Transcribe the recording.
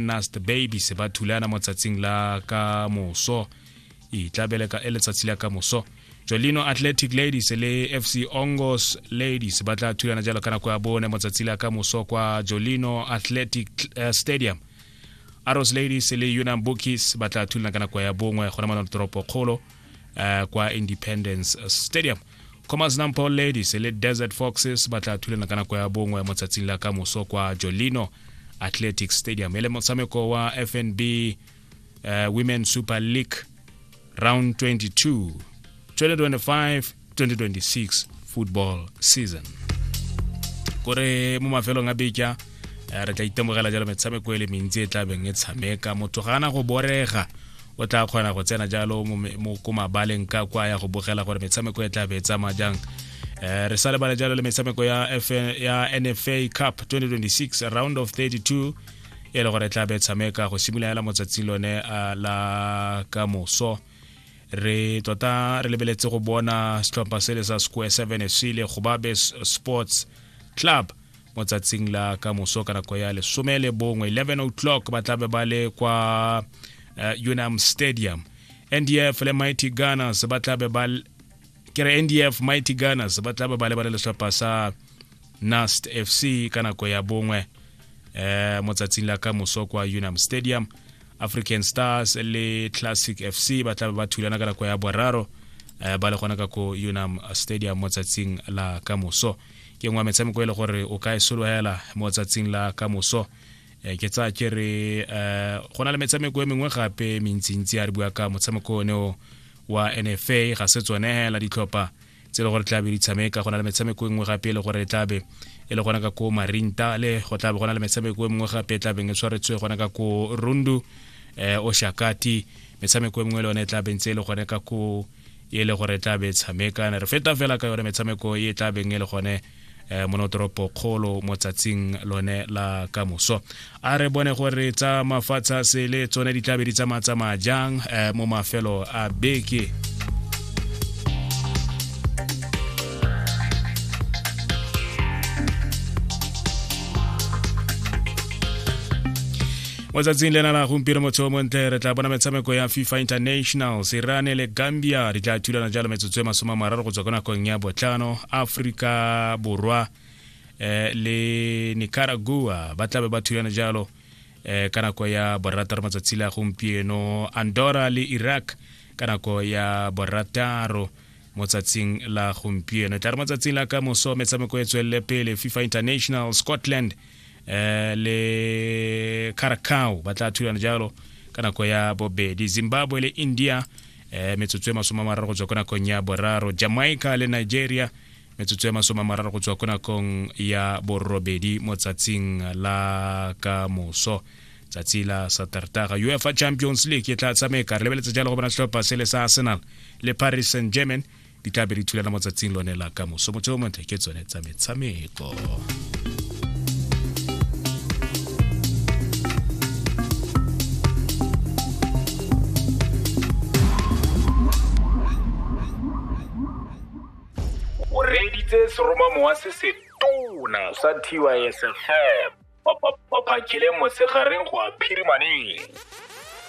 nast baby se ba thulana mo tsatsing la ka moso e tlabele ka e letsatsi la ka moso jolino athletic ladies le fc ongos ladies ba tla thulana jalo ka nako ya bone mo tsatsi la ka moso kwa jolino athletic eh, stadium arrows ladies le unam bookies ba tla thulana ka nako ya bongwe gona mo toropo kgolo eh, kwa independence stadium commerce number ladies le desert foxes ba tla thulana ka nako ya bongwe mo tsatsing la ka moso kwa jolino athletic stadium e le motshameko wa fnb uh, eh, women super league round 22 2025 2026 football season kore mo mafelong a beja eh, re tla itemogela jalo metshameko e le mentsi e tla beng e tshameka motho ga ana go borega o tla kgona go tsena jalo mo ko mabaleng ka kwa ya go bogela gore metshameko e tla be e tsamaya jang um re sa lebale jalo le metshameko ya nfa cup 2026 round of 32 e le gore e tla be e tshameka go simolola fela motsatsing lone eh, la ka moso re tota re lebeletse go bona setlhopha sele sa square seven fc le gobabe sports club mo tsatsing la ka moso ka nako ya lesome le bongwe 11 o'clock ba tlabe ba le kwa uh, unam stadium ndf le mighty gunners ba tlabe ba kere ndf mighty gunners ba tlabe ba lebale letlhopha sa nast fc ka nako ya bongwe eh, mo tsatsing la ka moso kwa unam stadium african stars le classic fc ba tlabe ba thulana ka nako ya boraro eh, ba le gona ka ko unam stadium mo tsatsing la ka moso ke ngwa metshameko e le gore o ka e sologela mo tsatsing la ka moso Eh, ke tsa ke re eh, go na le metshameko e mengwe gape mentsintsi a re bua ka motshameko one o wa nfa ga se tsone hela ditlhopha tse e le gore tlabe di tshameka go na le metshameko e nngwe gape e le gore e tlabe e le gona ka ko marinta le go tlabe go na le metshameko e mengwe gape e tlabeng e tshwaretswe gona ka ko rundu um eh, oshakati metshameko e mengwe le yone e tlabeng tse e le gone ka ko e le gore e tla be e tshameka ne re feta fela ka yone metshameko e tla beng e le gone eh, monotoropo kgolo mo tsatsing lone la kamoso a re bone gore tsa mafatsha sele tsone di tlabe di tsamatsamaya jang eh, mo mafelo a beke mo tsatsing lena la gompieno motho o montle re tla bona metshameko ya fifa internationals irane le gambia di tla thulana jalo metsotso e masome a mararo go tswa ko nakong ya botlhano aforika borwa eh, le nicaragua ba tlabe ba thulana jalo eh, ka nako ya borataro matsatsi la gompieno andorra le iraq ka nako ya borataro mo tsatsing la gompieno e tla re mo tsatsing la ka moso metshameko e tswelele pele fifa international scotland eh, le caracao ba tla thulana jalo ka nako ya bobedi zimbabwe le india eh, metsotso e masome a mararo go tswa ko nakong ya boraro jamaica le nigeria metsotso ya masome a mararo go tswa ko nakong ya borobedi mo tsatsing la ka moso tsatsi la satertaga uefa champions league e tla tsamaye ka re lebeletse jalo go bona setlhopha se le sa arsenal le paris saint germain di tla be di thulana mo tsatsing lone la ka moso motse o montle ke tsone tsa metshameko o reeditse seromamowa se se tona sa tysfm ba phakile mosegareng go a phirimaneng